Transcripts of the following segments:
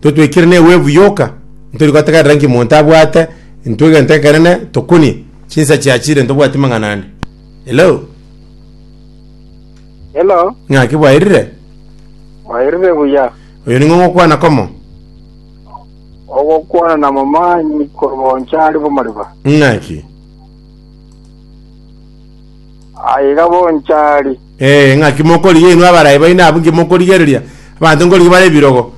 totwekire newevu yoka, ntori gotegerera nki monto abwate, intwe egento ekenene tokunie chinsa chiachire ntobwati mang'ana ande. Hello? Hello, Ng'aki bwairire? mwairire buya. Oyo ning'o ng'okwana komo? Ogokwana na momanyi korwa onchari bw'amariba. Ng'aki? Aiga bonchari. Ee, ng'aki mokorigia inwe abarai baino abwo inki mokorigereria? Abanto nkorigia bare ebirogo,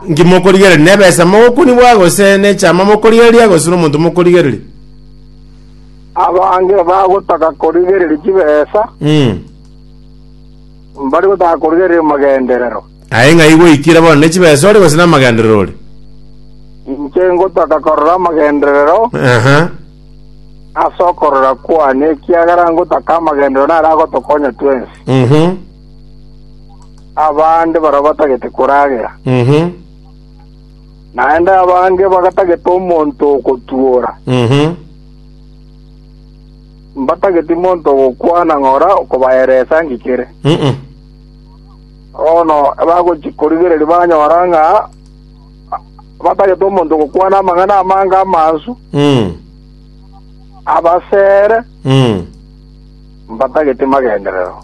inki mokorigereria? Nebesa mogokunigwa, gose nechama mokorigereria, gose nomonto mokorigereria? Abange bagotaka korigereria chibesa, Mm. mbare gotaka korigereria amagenderero. Aye ng'ai gwaikire bono, ne chibesa ore gose namagenderero ore? Inche ngotaka korora amagenderero, Aha. ase okorora kwane, ekiagera ngotaka amagenderero naro agotokonya twensi. Mhm. Abande barabwo batagete koragera, Mhm. naende abange bagatagete omonto ogotuora. Mhm. Mbatageti monto ogokwana ng'ora okobaera esangi kere. Mhm. Bono bagochi korigereria banyora ng'a Abatagete omonto ogokwana amang'ana amange amansu abasere, mbatageti magenderero.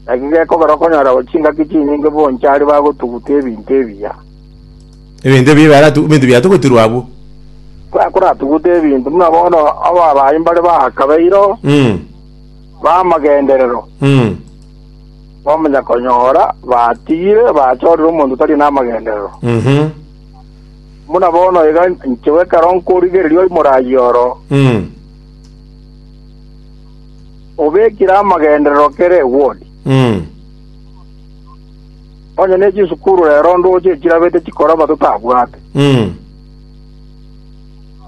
Naki gekogera okonyora abo chingaki chinyinge bonchari bagotuguta ebinto ebiya, Ebinto ebi biaratu ebinto biatugutirwe abwo. bakoratuguta ebinto buna bono ababayi mbare baakabeire b'amagenderero. Bamanya konyora batigire bachorire omonto otari namagenderero. Mhm. Buna bono iga nchigwe ekero nkorigereria oimore ayio oro, Mm. obekire amagenderero kere ewodi. Mm. Onye ne chisukuru rero ndoche chirabete chikoroba totabwate. Mm.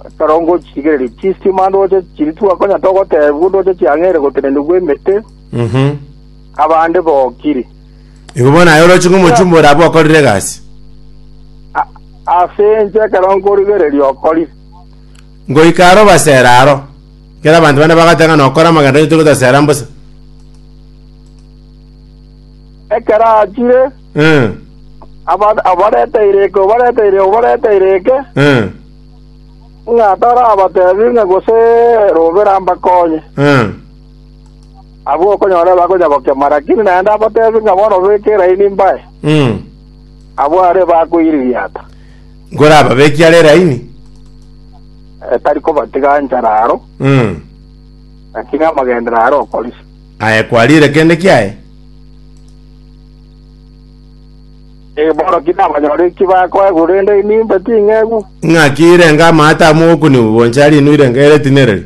Ekero ngochirigereria chistima ndoche chiri twakonya togotebwa ndoche chiang'eire gotenenigwa emete. Mhm. abande bokiri. Igo bono aye oroche ng'omochumba ore abwo okorire egasi. A- Ase inche ekero nkorigereria okori, Ngoika aro basera aro. Kera abanto bane bagateba ng'a nokora amagendo onye togotasera mbosa. ekero achire Mm. aba- abarete ireke obarete ireke obarete ireke Mm. ng'a tarabatebi ng'a gose robera mbakonye Mm. Abwo okonyora bakonya gokemwa, lakini naende abateebie ng'a bono beke eraini mbae, Mm. abwo are bakoiririata. Nkorababekie are eraini. Eh, tari kobatiga anchara aro, Mm. lakini amagendera are okorisia. Aye kwarire kende kiaye? Eh, bono ki nabanyore eki bakoe, korende nimbe ting'egu. Ng'aki irenga amaata amogokuniwa bonsi ari inwe irenga ere tinereri?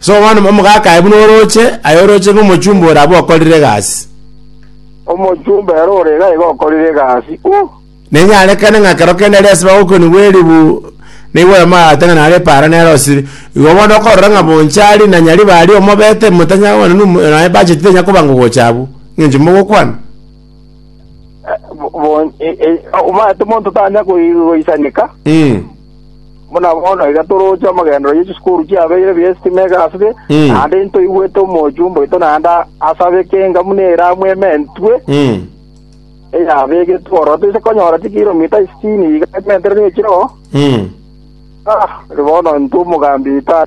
So bono omogaka aye buna orooche, aye orooche ng'omochumba ore abwo okorire egasi. Omochumba ere ore iga iga okorire egasi. Uh! Nenyarekane ng'a ekero kende aria ase bagokonigwa eribu, nigo oyomagaate ng'a nare epaara nere osibi. Igo bono okorora ng'a bonchari na nyaribari omobete, motanyara kobana nu- naye bacheti tenya koba ngogocha abwo, ng'encho mogokwana. Eh, bo- bon- e- e- omanyete omonto tanya koi- goisanika, Mm. Buna bono iga toroche amagenderero ye chisukuru chiabeire bi'estima egasibe, Mm. naende intoigwete omochumba oito naende asabeke engamu neramu ementwe Mm. eyabegetwe ororo toise konyora chikilomita isitini iga ementere ne chirogo. Mm. Ah, bono intwe omogambi tata